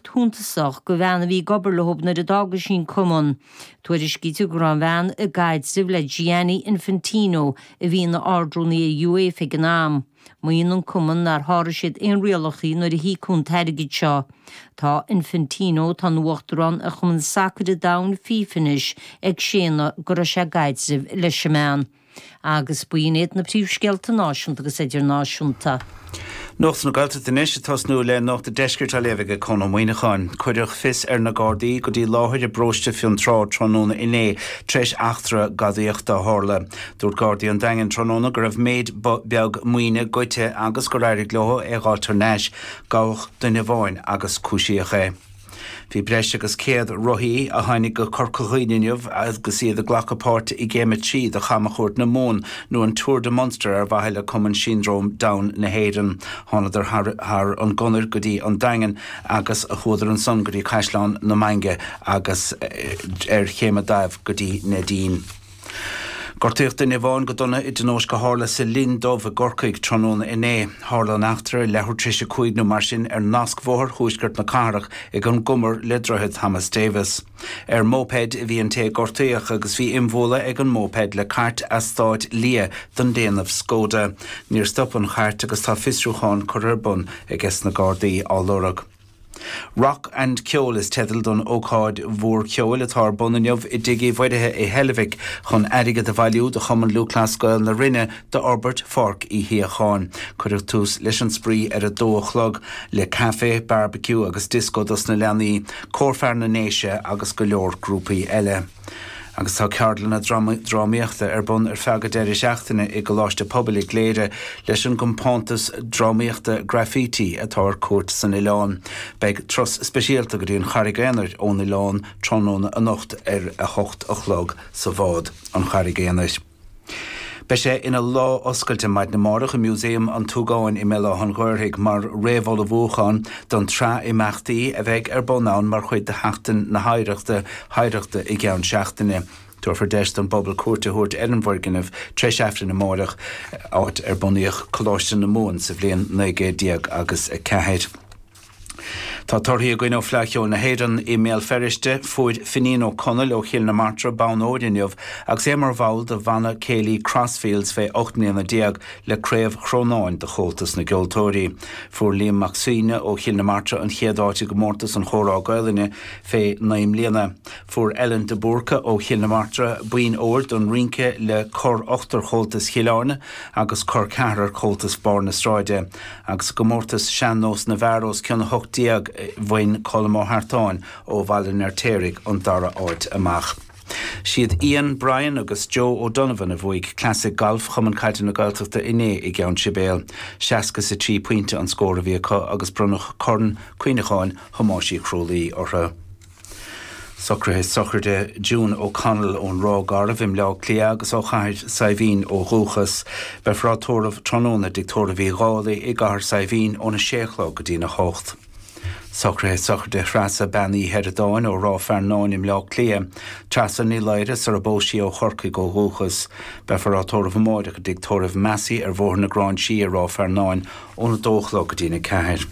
shuntasach do bhean a bhí ag obair leo nuair a d'fhág sí an cumann. Tuairiscítear go raibh an bhean i gcaidreamh le Gianni Infantino, a bhí ina Ard-Rúnaí ag UEFA ag an am. Maíonn an cumann nár sháraigh siad aon rialacha nuair a híocadh an t-airgead seo. Tá Infantino, atá ina uachtarán ar Chumann Sacair an Domhain, FIFA anois, ag séanadh go raibh sé i gcaidreamh leis an mbean. Agus b'in iad na príomhscéalta náisiúnta agus idirnáisiúnta. Nuacht na Gaeltachta anois ag tosnú le Nuacht an Deiscirt á léamh aige Conán Ó Muíneacháin. Cuireadh fios ar na Gardaí go dtí láthair i bparóiste Fionn Trá tráthnóna inné tar éis eachtra gadaíochta a tharla. Dúirt Gardaí an Daingin tráthnóna go raibh méid beag maoine goidte agus gur éirigh leo é a dh'fháilt thar n-ais. Gabhadh duine amháin agus cúisíodh é. Bhí breis agus 100 rothaí tar éis teacht go Corca Dhuibhne inniu agus iad ag glacadh páirte i gCéim 3 de Chamchuairt na Mumhan, nó an Tour de Munster ar mhaithe le Cumann Siondróm Down na hÉireann. Thánadar thar an gConair go dtí an Daingean agus chuadar ansan go dtí Caisleán na Mainge agus ar Chéim an Daimh go dtí Neidín. Gortaíodh duine amháin go dona i dtionóisc a tharla sa Linn Dubh i gCorcaigh tráthnóna inné. Tharla an eachtra ar leathuair tar éis a cúig nó mar sin ar nascbhóthar thuaisceart na cathrach ag an gcumar le Droichead Thomas Davis. Ar mhóipéid a bhí an té a gortaíodh agus bhí imbhualadh ag an móipéad le cairt eastáit liath den déanamh Skoda. Níor stop an chairt agus tá fiosrúchán curtha ar bun ages na Gardaí á lorg. Rock and Ceol is teideal don ócáid mhór cheoil atá ar bun inniu i dTigh Uí Mhuirithe i Heilbhic chun airgead a bhailiú do Chumann Lúthchleas Gael na Rinne d'fhorbairt Pháirc Uí Shíocháin. Cuireadh tús leis an spraoi ar a dó a chlog le caife, barbecue agus disco dos na leanaí, Cór Fear na nDéise agus go leor grúpaí eile. Agus tá ceardlanna drámaíochta ar bun ar feadh an deireadh seachtaine i gColáiste Pobail i gCléire leis an gcompántas drámaíochta Graffiti atá ar cuairt san oileán. Beidh turas speisialta go dtí an Charraig Aonair ón oileán tráthnóna anocht ar a hocht a chlog sa bhád, An Charraig Aonair. Beidh sé ina lá oscailte maidin amárach i Museum an tSúgáin i mBéal Átha'n Ghaorthaidh mar réamhullmhúchán don tsraith imeachtaí a bheidh ar bun ann mar chuid de Sheachtain na hOidhreachta hOidhreachta i gceann seachtaine. Tabharfar deis don bpobal cuairt a thabhairt ar an bhfoirgneamh tréis a hocht amárach, áit ar bunaíodh Coláiste na Mumhan sa bhliain naoi gcéad déag agus a ceathair. Tá torthaí againn ó Fleadh Cheoil na hÉireann i mBéal Feirste. Fuair Finín Ó Conaill ó Chill na Martra bonn óir inniu agus é mar bhall de Bhanna Céilí Crossfields fé ocht mbliana déag le Craobh Chrónáin de Chomhaltas na gCeoltóirí. Fuair Liam Mac Suibhne ó Chill na Martra an chéad áit i gComórtas an Chomhrá Gaolainne fé naoi mbliana. Fuair Ellen de Búrca ó Chill na Martra boinn óir don rínce le Cor Ochtar Chomhaltas Chill Airne agus Cor Ceathrair Chomhaltas Barr na Sráide. Agus i gcomórtas sean-nós na bhfear os cionn 18, bhain Colm Ó hEartáin ó Bhaile an Fheirtéaraigh an dara áit amach. Siad Ian, Brian agus Joe O'Donovan a bhuaigh Clasaic Gailf Chumann Caide na Gaeltachta inné i gCeann Sibéal. Seasca is a trí pointe an scór a bhí acu agus bronnadh Corn Cuimhneacháin Thomáis Uí Chrualaoich orthu. Socruithe sochraide June O'Connell ón Ráth Garbh i mBleá Cliath agus ó Chathair Saidhbhín ó dhúchas. Beifear á tórramh tráthnóna i dtigh tórraimh Uí Dhálaigh i gCathair Saidhbhín óna sé a chlog go dtí na hocht. Socruithe sochraide Threasa Bean Uí Sheireadáin ó Ráth Fearnáin i mBleá Cliath. Treasa Ní Laoire sar a bpós sí ó Chorcaigh ó dhúchas. Beifear á tórramh amáireach i dtigh tórraimh Massey ar Bhóthar na Gráinsí i Ráth Fearnáin óna 2 a chlog go dtí'n 4.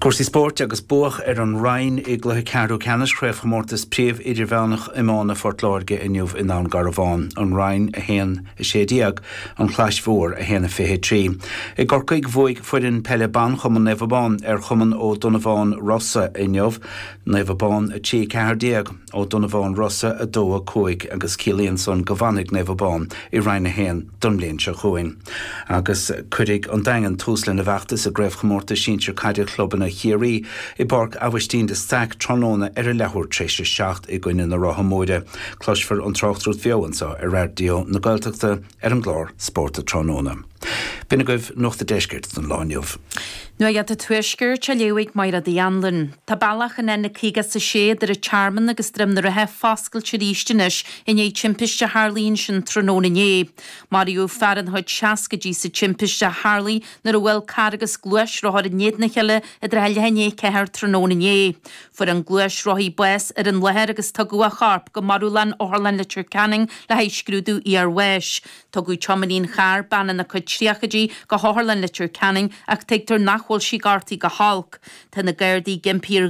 Cúrsaí spóirt agus buadh ar an Rinn i gcluiche ceathrú ceannais Chraobhchomórtas Príomh-Idirmheánach Iomána Phort Láirge inniu i nDún Garbhán, An Rinn 1, 16, An Chlais Mhór 1, 23. I gCorcaigh bhuaigh foireann peile ban Chumann Naomh Abán ar Chumann Ó Donnabháin Rossa inniu, Naomh Abán 3, 14. Ó Donnabháin Rossa 2, 5, agus ciallaíonn san go bhfanfaidh Naomh Abán i Roinn 1 don mbliain seo chugainn. Agus cuirfidh an Daingean tús lena bhfeachtas i gCraobhchomórtas Sinsir Caide Chlubanna Chiarraí i bPáirc Abhaistín de Staic tráthnóna ar a leathuair tar éis a seacht i gcoinne na Rátha Móire. Cloisfear an tráchtaireacht bheo anseo ar Raidió na Gaeltachta. ar an gclár Spórt an Tráthnóna. B'in agaibh Nuacht an Deiscirt don lá inniu. Nuacht an Tuaiscirt á léamh ag Máire Uí Anluain. Tá bealach an N56 idir an Tearmann agus Droim na Rátha foscailte arís anois i ndiaidh timpiste a tharlaigh ansin tráthnóna inné. Maraíodh fear ina chuid seascaidí sa timpiste a tharlaigh nuair a bhuail carr agus gluaisrothar in éadan a chéile i dtrátha leath i ndiaidh a 4 tráthnóna inné. Fuair an gluaisrothaí bás ar an láthair agus tugadh a chorp go marbhlann Otharlann Leitir Ceanainn le haghaidh scrúdú iar-bháis. Tugadh tiománaí an chairr, bean ina cuid tríochaidí, go hOtharlann Leitir Ceanainn ach tuigtear nach bhfuil sí gortaithe go holc. Tá na Gardaí ag impí ar